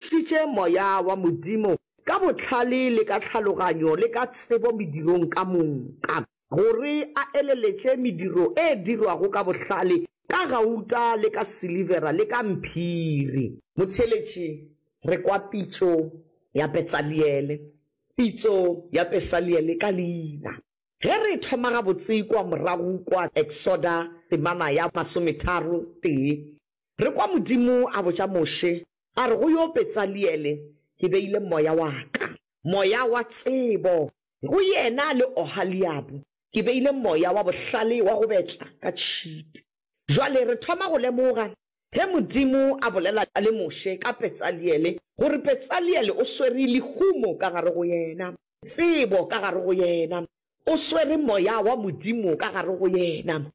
šitše Moya wa Modimo ka bohlale le ka tlhaloganyo le ka tsebo medirong ka moka, gore a eleletše mediro e dirwago ka bohlale ka gauta le ka silivera le ka mphiri. Motheeletši, re kwa pitšo ya Petsaliele, pitšo ya Pesaliele ka leina. Ge re e thoma gabotse kua morago kwa Eksoda temana ya masometharo tee, re kwa Modimo a botša Moshe, A re go yo, Betsaliele, ke beile Moya wa Ka, Moya wa tsebo, go yena, le Ohaliabu, ke beile Moya wa bohlale wa go betla ka tšhipi. Bjale re thoma go lemoga, ge Modimo a bolela le Moshe ka Betsaliele, gore Betsaliele o swere lehumo ka gare go yena, tsebo ka gare go yena, O swere Moya wa Modimo ka gare go yena.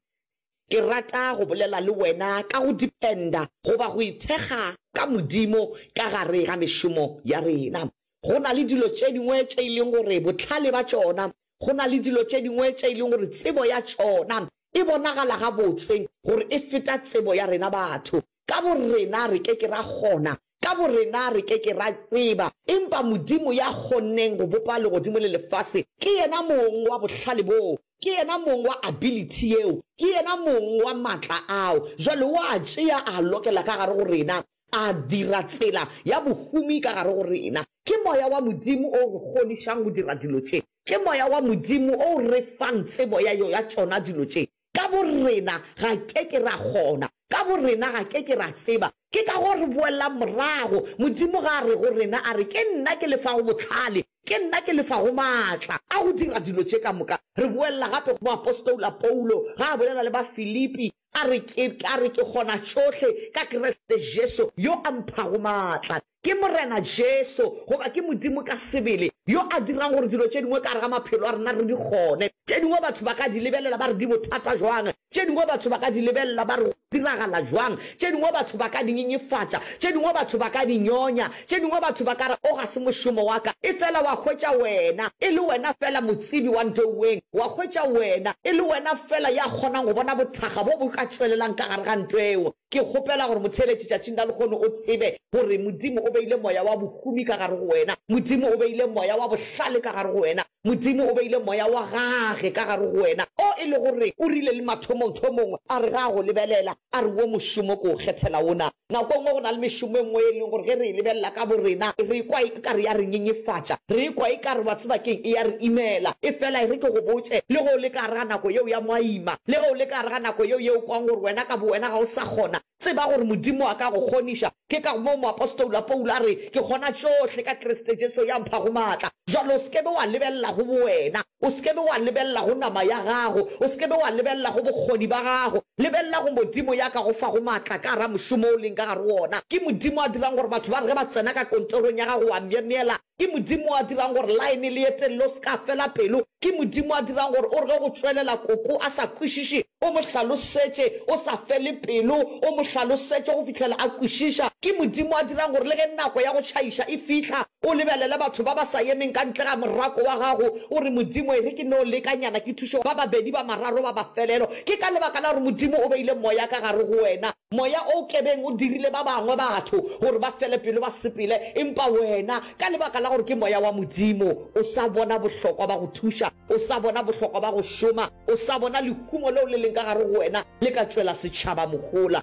Ke rata go bolela le wena ka go dependa, goba go ithekga ka Modimo ka gare ga mešomo ya rena. Go na le dilo tše dingwe tše e leng gore bohlale ba tšona, go na le dilo tše dingwe tše e leng gore tsebo ya tšona e bonagala gabotse gore e feta tsebo ya rena batho. Ka borena re ke ke ra kgona, ka borena re ke ke ra tseba, empa Modimo ya kgonneng go bopa legodimo le lefase, ke yena mong wa bohlale boo, ke yena mong wa ability yeo, ke yena mong wa matla ao. Jwale o a tšea a a lokela ka gare go rena, a dira tsela ya bohumi ka gare go rena. Ke Moya wa Modimo o o re kgonišang go dira dilo tše. Ke Moya wa Modimo o o re fang tsebo ya, ya tšona dilo tše. Ka borena ga ke ke ra kgona. Ka borena ga ke ke ra tseba. Ke ka go re boelelang morago. Modimo ga a re go rena, a re, Ke nna ke le fago bohlale. Ke nna ke le fago maatla a go dira dilo tše ka moka. Re boelela gape go moapostola Paulo ga a bolela le Bafilipi, a re, Ke, a re, ke kgona tšohle ka Kriste Jesu yo a mphago maatla. Ke Morena Jesu, goba ke Modimo ka sebele, yo a dirang gore dilo tše dingwe ka gare ga maphelo a rena re di kgone. Tše dingwe batho ba ka di lebelela ba re di bothata bjang, tše dingwe batho ba ka di lebelela ba re go diragala bjang, tše dingwe batho ba ka di nyenyefatša, tše dingwe batho ba ka di nyonya, tše dingwe batho ba ka re o ga se mošomo wa ka. Efela wa hwetša wena, e le wena feela Motsebi wa ntweuweng, wa hwetša wena, e le wena feela ya kgonang go bona bothakga bo bo ka tšwelelang ka gare ga ntweo. Ke kgopela gore motheeletši tšatšing la lekgono o tsebe gore Modimo o beile moya wa bohumi ka gare go wena. Modimo o beile moya wa bohlale ka gare go wena. Modimo o beile moya wa Gage ka gare go wena, o e lego gore O rile le mathomongthomong a re ge A go lebelela, a re, Wo mošomo ke o kgethela wona. Nako e nngwe go na le mešomo e nngwe e leng gore ge re e lebelela ka borena, re e kwa e. Ekare ya re nyenyefatša, re ekwa ekare wa tseba ke'ng, e ya re imela. Efela e re ke go botše, le ge o le ka gare ga nako yeo ya mo a ima, le ge o le ka gare ga nako yeo ye o kwago gore wena ka bowena ga o sa kgona, tseba gore Modimo a ka go kgoniša. Ke ka moo moapostola Paulo a re, Ke kgona tšohle ka Kriste Jesu ya mphago matla. Bjale o se ke be wa lebelela go bowena, o se ke be wa lebelela go nama ya gago, o se ke be wa lebelela go bokgoni ba gago, Lebelela go Modimo ya ka go fago maatla ka gare mošomo o leng ka gare go wona. Ke Modimo a dirang gore batho ba re ge ba tsena ka kontorong ya gago wa myemyela. Ke Modimo a dirang gore line le ye telele o se ka fela pelo. Ke Modimo a dirang gore o re ge go tšwelela koko a sa kwešiše o mo hlalosetše o sa fele pelo, o mo hlalosetše go fihlela a kwešiša. Ke Modimo a dirang gore le ge nako ya go tšhaiša e fihla O lebelele batho ba ba sa yemeng ka ntle ga morako wa gago, o re, Modimo, e re ke no lekanyana ke thuše ba babedi ba mararo ba mafelelo. Ke ka lebaka la gore Modimo o beile Moya ka gare go wena, Moya o kebeng o dirile ba bangwe batho gore ba fele pelo ba sepele, empa wena, ka lebaka la gore ke Moya wa Modimo, o sa bona bohlokwa ba go thuša, o sa bona bohlokwa ba go šoma, o sa bona lehumo leo le leng ka gare go wena le ka tšwela setšhaba mohola.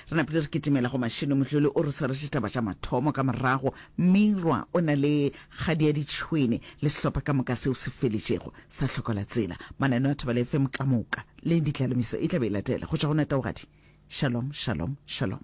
Re napile re kitimela go Mashilo. Mohloli o re swaretse ditaba tša mathomo. Ka morago, Meirwa o na le kgadi ya ditšhwene le sehlopha ka moka seo se feletšego sa hlokola tsela. Mananeo a Thobela FM ka moka le ditlalemoiso e tla be e latela go tšwa go Netaogadi. Shalom, shalom, shalom.